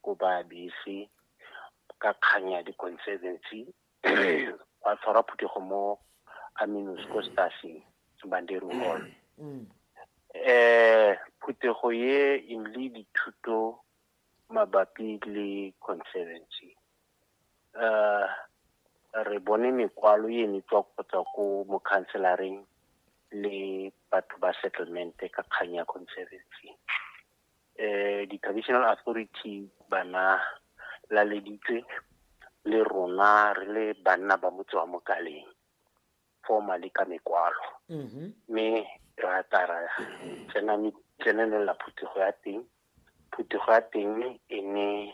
kopa bese ka kgang ya di-conservancy wa tshwara phuthego mo aminos ko staseng bandero hall um phuthego ye e le dithuto mabapi le conservancy um re bone mekwalo e ne tswa kgotsa ko mokhanselareng le batho ba settlement ka kgang ya conservancy eh, di-traditional authority bana laleditswe le rona re le banna ba motse wa mokaleng formally ka mekwalo mm-hmm. mme mm -hmm. ra tara tsenanela phuthego ya teng phuthego ya teng e ne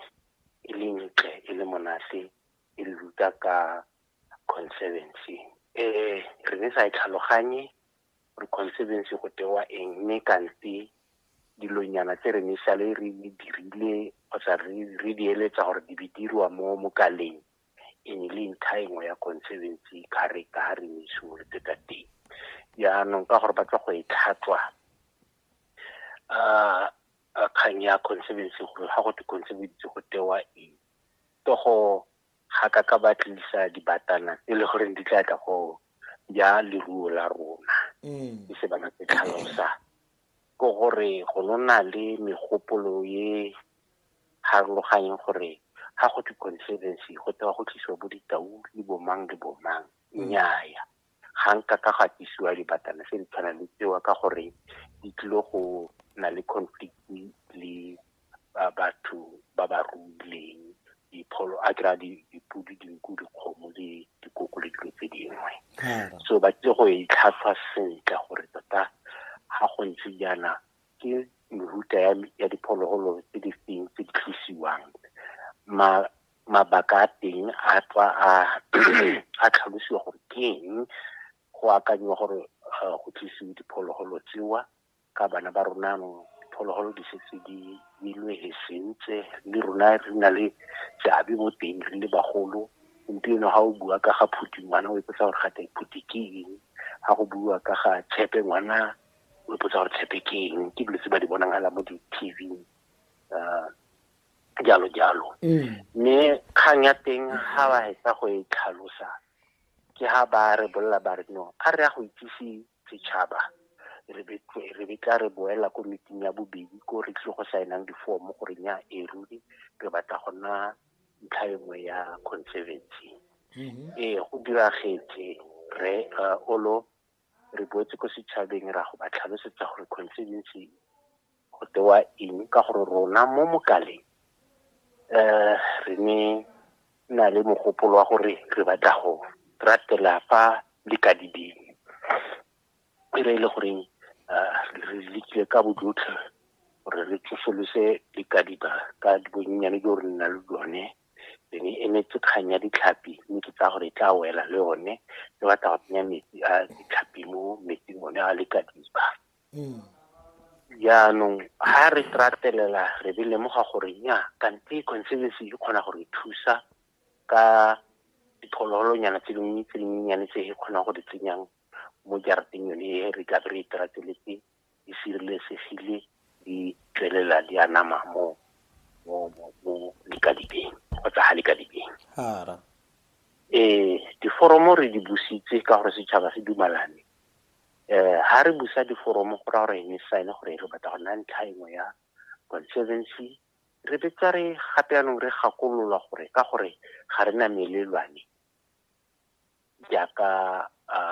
e le ntle e le monate e le ruta ka conservancy um re ne sa e tlhaloganye gore conservancy go tewa eng mme kante dilonyana tse re nesale re di dirile kgotsa re di eletsa gore di be dirwa mo mokaleng e ne le ntlha e nngwe ya conservancy ka re ka re ne simolotse ka teng jaanong ka gore ba tla go e tlhatswa um kgang ya conservancy gore ga go te conservancy go tewa eng to go ga ka ka ba tlisa dibatana e le goreng di tla tla go ja leruo la rona e se bana se tlhalosa ko gore go nona le megopolo ye harologanyeng gore ga go thwe conservancy go tewa go tlisiwa bo ditau le bomang le bomang nnyaya ga nka ka ga tisiwa dibatana se di tshwana le tsewa ka gore di tlile go na le conflict le batho ba ba ruileng dipholo a kry-a dipodi dinku dikgomo le dikoko le dilo tse dingwe so ba tlile go e tlhatlhwa sentle gore tota ga go ntse jaana ke mehuta ya diphologolo tse di feng tse di tlosiwang mabaka a teng a tswa a a tlhalosiwa gore ke eng go akanyiwa gore eh, go tlisiwe diphologolo tsewa ka bana ba rona diphologolo di setse di ilwe he sentse le rona re na le seabe mo teng re le bagolo gompieno ga o bua ka ga phuti ngwana o ipotsa gore gate phuti ke eng ga go bua ka ga tshepe ngwana o ipotsa gore tshepe ke eng ke dilo tse ba di bonagala mo di-tv um eh, jalo jalo mm. mme kgang ya teng ga ba hetsa go e tlhalosa ke ha ba re bolela ba re no a re ya go itsise setšhaba re betla re boela ko meeting ya bobedi ko re tlile go saenang difomo gore nya e ruri re batla go nna ntlha e nngwe ya conservancy mm-hmm. ee go diragetse re uh, olo re boetse ko setšhabeng ra go ba tlhalosetsa gore constituency go tewa eng ka gore rona mo mokaleng um re ne na le mogopolo wa gore re batla go ratela fa le ka dibeng e re e le goreng um re lekile ka bojotlhe gore re tsosolose dikadiba ka bonnyane jo re nna le jone be ne emetse kgang ya ditlhapi mme ke tsaya gore e tla wela le one e batla go tsenya metsi a ditlhapi mo metsing one a le ka diba mm. jaanong ga re tratelela re be lemoga gore nya kante conservancy e kgona gore e thusa ka diphologolonyana tse dingwe tse dinyenyane tse e kgonang go di tsenyang mo jarateng yone e re tla be re e trateletse di sireletsegile di tswelela di anama mo mo mo mo likadibeng kgotsa ga likadibeng hara eh diforomo re di busitse ka gore setšhaba se dumalane eh ha re busa diforomo go ra gore ene sign gore re batla go nna ntlha engwe ya conservancy re betsa re gape yanong re gakolola gore ka gore ga re na melelwane jaaka